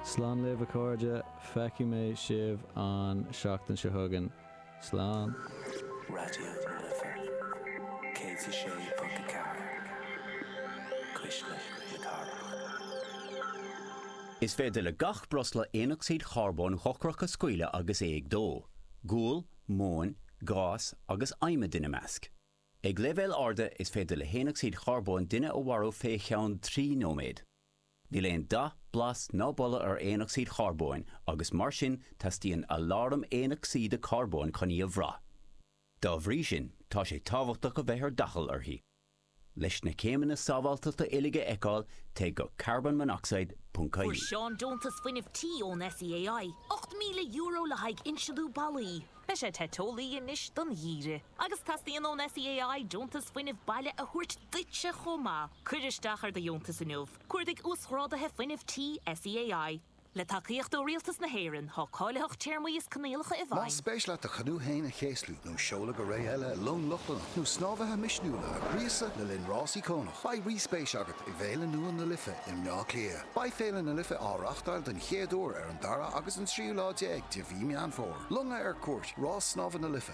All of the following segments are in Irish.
Slán libh a chairde, feicfidh mé sibh an seachtain seo chugainn. Slán. Raidió na Life 106.4, cuisle na cathrach. Is féidir le gach breosla aonocsaíd charbóin dhochrach a scaoileadh agus é ag dó, gual, móin, gás agus adhmad ina measc. Ag leibhéil arda, is féidir le haonocsaíd charbóin duine a mharú fé cheann trí nóiméad. Níl aon dath, blas ná boladh ar aonocsaíd charbóin agus mar sin teastaíonn aláram aonocsaíde carbóin chun í a bhrath. Dá bhrí sin, tá sé tábhachtach a bheith ar d'fhaichill uirthi. Leis na céimeanna sábháilteachta uilig a fheiceáil, téigh go carbonmonoxide.ie. Fuair Seán deontas fuinnimh tí ón SEAI, €8,000 le haghaidh insealú ballaí. Beidh sé te teolaí anois don gheimhreadh. Agus teastaíonn ón SEAI deontas fuinnimh baile a thabhairt duitse chomh maith. Cuir isteach ar do dheontas inniu. Cuardaigh Uasghráduithe Fuinnimh Tí SEAI. Le tacaíocht ó Rialtas na hÉireann, tá cáilitheacht téarmaí is coinníollacha i bhfeidhm. Más spéis leat do churach féin a chéaslú nó seoladh go réidh i long Lochlannach nó snámhaithe misniúla a ghríosadh le linn rásaí curach, beidh rí-spéis agat i bhféile nua na Life i mBleá Cliath. Beidh Féile na Life á reáchtáil den chéad uair ar an dara agus an tríú lá déag de mhí Meán Fómhair. Longa ar Cuairt, Rás Snámha na Life.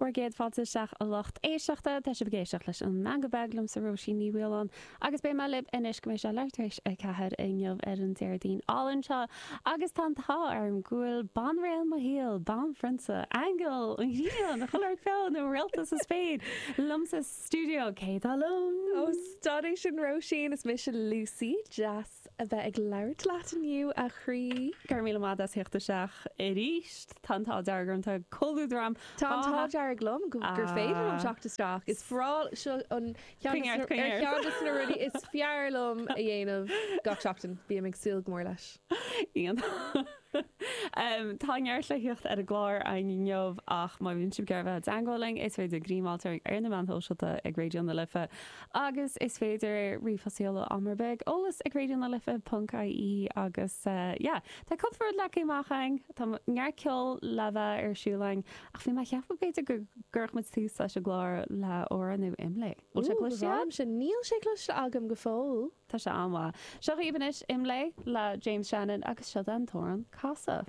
Agus céad fáilte isteach a lucht éisteachta. Tá sibh ag éisteacht leis an mbean ba bheag liomsa, Róisín Ní Mhaoláin, agus beidh mé libh anois go mbeidh sé leath tar éis a ceathair inniu ar an Déardaoin álainn seo agus tá an t-ádh orm go bhfuil banríon mo shaoil, banphrionsa, aingeal an ghrian, Coláir Teo nó réalta sa spéir liomsa sa stiúideo, cé atá liom? Ó, stadaigh sin Róisín, is mise Lucy. Deas. S, a bheith ag labhairt leat inniu, a chroí. Go raibh míle maith as a theacht isteach arís. Tá an t-ádh dearg orm, tá comhluadar agam. Tá an t-ádh dearg liom gur féidir liom teacht isteach. Is breá, seo ceann de na rudaí is fearr liom a dhéanamh gach seachtain. Bím ag súil go mór leis. Iontach. Tá neart le theacht ar an gclár inniu ach má bhíonn sibh ag iarraidh bheith i dteangmháil linn is féidir greim a fháil orainn ar na meáin shóisialta ag Raidio na Life agus is féidir ríomhphost a sheoladh am ar bith ag eolas ag raidio na life ponc ie agus yeah tá cúpla rud leagtha amach againn tá neart ceol le bheith ar siúl againn ach bhí mé ag ceapadh b'fhéidir go gcuirfeadh muid tús leis an gclár le amhrán nua Imlé. Bhfuil sé cloiste agat? Níl sé cloiste agam go fóill. Tá sé an-mhaith. Seo dhaoibh anois Imlé le James Shannon agus seo é an t-amhrán Casadh.